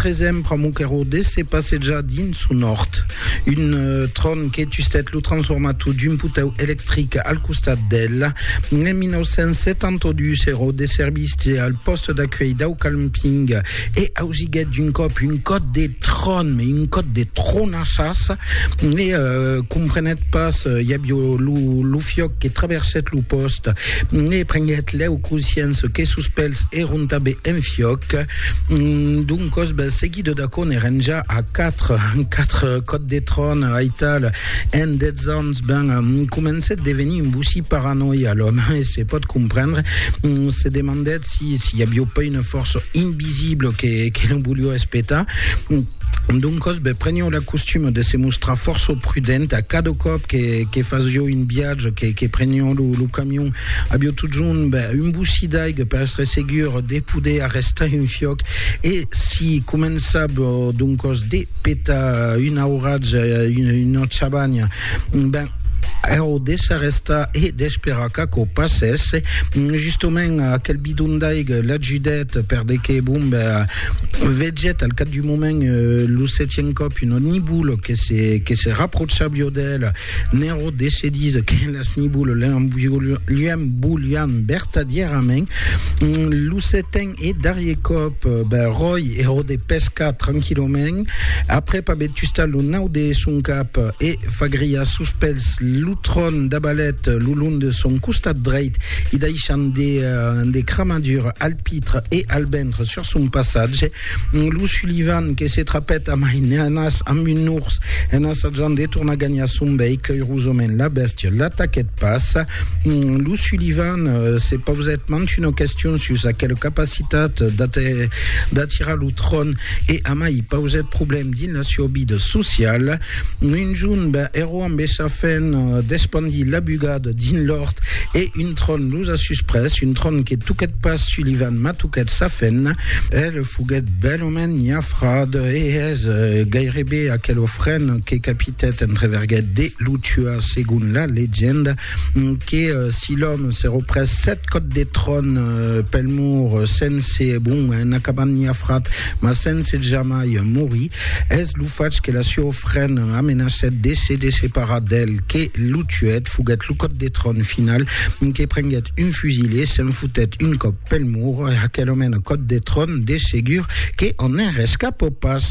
Tresèm pr'amor qu'èro de se passejar dins son òrt, un tron que tustèt lo transformator d'un potèu electric al costat d'el. En 1972 èro de servici al pòste d'acuèlh dau calmping e ausiguèt d'un còp un còt de tron, mai un còt de tronachas e comprenèt pas, i avió lo fiòc que traversèt lo pòste e prenguèt lèu consciença que sos pèls èron tanben en fiòc. Doncos, bel seguido d'aquò n'èren ja a quatre, quatre còps de tròn, aital, en dètz ans, ben, comencèt devenir un bocí paranòia l'òme, e se pòt comprendre, se demandèt si, si i avió pas una fòrça invisibla que, que lo volió espetar, Doncos, be, prenió la costuma de se mostrar fòrça prudent a cada còp que, que fasió un viatge, que, que prenió lo, lo camion. Avió totjorn be, un bocí d'aiga per estre segur de poder arrestar un fiòc e si començava doncos de petar un auratge, una, una chabanha, ben, au de s'arrestar e d'esperar qu'aquò passèsse, justament aquel bidon d'aiga l'ajudèt per de que, bon, be, Vegèt al cap d'un moment lo setièm còp una nibula que se, que se raprocha viò d'ela. Nero decidís que las nibulas li embolián vertadièrament. Lo setèm e darrier còp, ben, Ròi ero de pescar tranquillament, aprèp aver tustat lo nau de son cap e fagriat sos pèls, lo tron dabalèt lo long de son costat dreit, i daishant de cramadura al pit, Albentre e Albentre sur son passatge, lo Sullivan que se trapèt a mainenas amb un ors en assajant de tornar ganhar son veïcle, eirosament la bèstia l'ataquèt pas. Lo Sullivan se pausèt mant una question sus aquela capacitat d'atirar lo tron e amai pausèt problèm dins la siua vida sociala. Un jorn, ben, Aquò ambessa fen despandir la bugada dins l'òrt e un tron los a susprés, un tron que toquèt pas Sullivan, mas toquèt sa fen. El foguèt bèlament nhafrat e es gairebe aquelo fren que capitèt entreverguèt de lo tuar, segon la legenda, que si l'òme se représ sèt còps de tron pel mur sense, bon, en acabant nhafrat, mas sense jamai morir. Es lo fach que la sua ofrena amenacèt de se desseparar d'el que lo tuèt. Foguèt lo còp de tròn final que prenguèt un fusil e se'n fotèt un còp pel mur. Aquel òme en còp de tròn, de segur que en enrescapò pas.